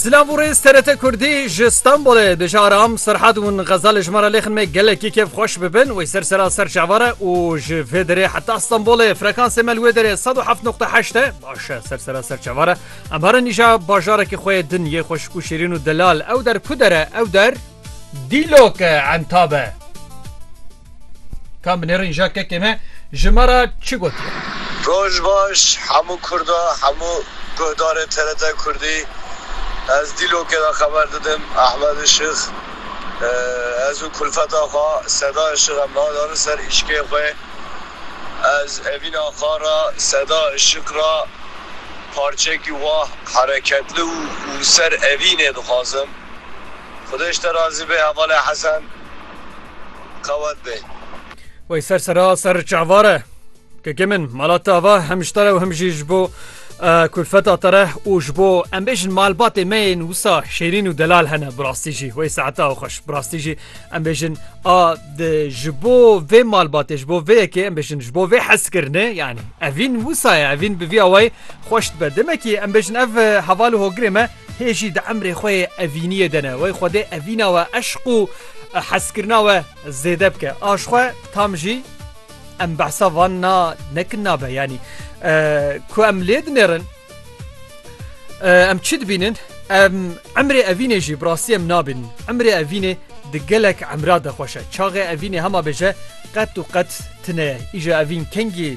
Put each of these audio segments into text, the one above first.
Silav û rêz TRT Kurdî ji Stenbolê bijaram Serhad û Xeza li ji me re lêxin me gelekî kêf xweş bibin wê ser sera ser çavar e û ji vê derê heta Stenbolê frekansê me li wê derê sed û heft noqta heşt e baş e ser sera ser çavar e em herin îja bajarekî xwe yê din yê xweşik û şêrîn û delal ew der ku der e ew der dîlok e entabe. Kan binêrin ja kekê me ji me re çi gotiye? Roj baş hemû kurda hemû guhdarê TRT kurdî ez dîlokê de xeber didim Ehmed Işık ez û kulfeta xwe Seda Işık em nadarin ser îşkê xwe ez evîn axa re Seda Işık re parçekî wah hereketli û ser evînê dixwazim xwedêş te razî be hevalê Hesen. Qewet be. Wey ser sera ser çavar e. Kekê min mala te ava hem ji te re û hem jî ji bo kulfeta te re û ji bo em bêjin malbatê me yên wisa şêrîn û delal hene bi rastî jî wey saeta ew xweş bi rastî jî em bêjin a ji bo vê malbatê ji bo vê yekê em bêjin ji bo vê hezkirinê yanî evîn wisa ye evîn bi vî awayî xweş dibe demekî em bêjin ev heval û hogirê me Hê jî di emrê xwe yê evîniyê de ne wey Xwedê evîna we eşq û hezkirina we zêde bike. Aş xwe tam jî em behsa van na nekin nabe yanî ku em lê dinêrin em çi dibînin em emrê evînê jî birastî em nabînin. Emrê evînê di gelek emra de xweş e. Çaxê evînê hema bêje qet û qet tine ye. Îja evîn kengî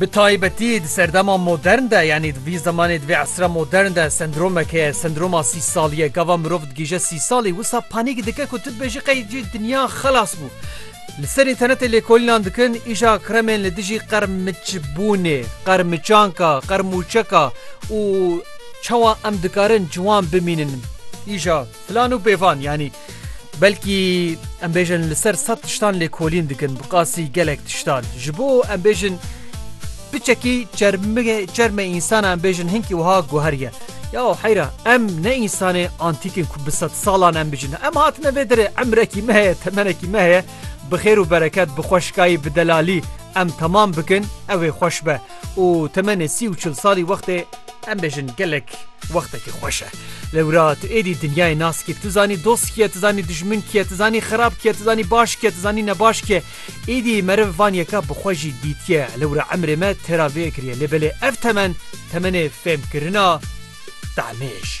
Bi taybetî di serdema modern de yanî di vî zemanê di vê esra modern de sendromek heye, sendroma sî salî ye. Gava mirov digihîje sî salî wisa panîk dike ku tu dibêjî qey cî dinya xelas bû. Li ser înternetê lêkolînan dikin îja kremên li dijî qermiçbûnê, qermiçanka, qermûçeka û çawa em dikarin ciwan bimînin. Îja filan û pêvan yanî. Belkî em bêjin li ser sed tiştan lêkolîn dikin bi qasî gelek tiştan. Ji bo em bêjin piçekî çermê însana em bêjin hinkî wiha guheriye. Ya heyra em ne însanê antîkin ku bi sed salan em bijin. Em hatine vê derê emrekî me heye temenekî me heye bi xêr û bereket bi xweşkayî bi delalî em temam bikin ew ê xweş be. û temenê sî û çil salî wextê em bêjin gelek wextekî xweş e. Lewra tu êdî dinyayê nas kî, tu zanî dost kî ye, tu zanî dijmin kî ye, tu zanî xerab kî ye, tu zanî baş kî ye, tu zanî nebaş kî ye. Êdî meriv van yeka bi xwe jî dîtiye. Lewra emrê me têra vê kiriye. Lê belê ev temen, temenê fêmkirina demê ye jî.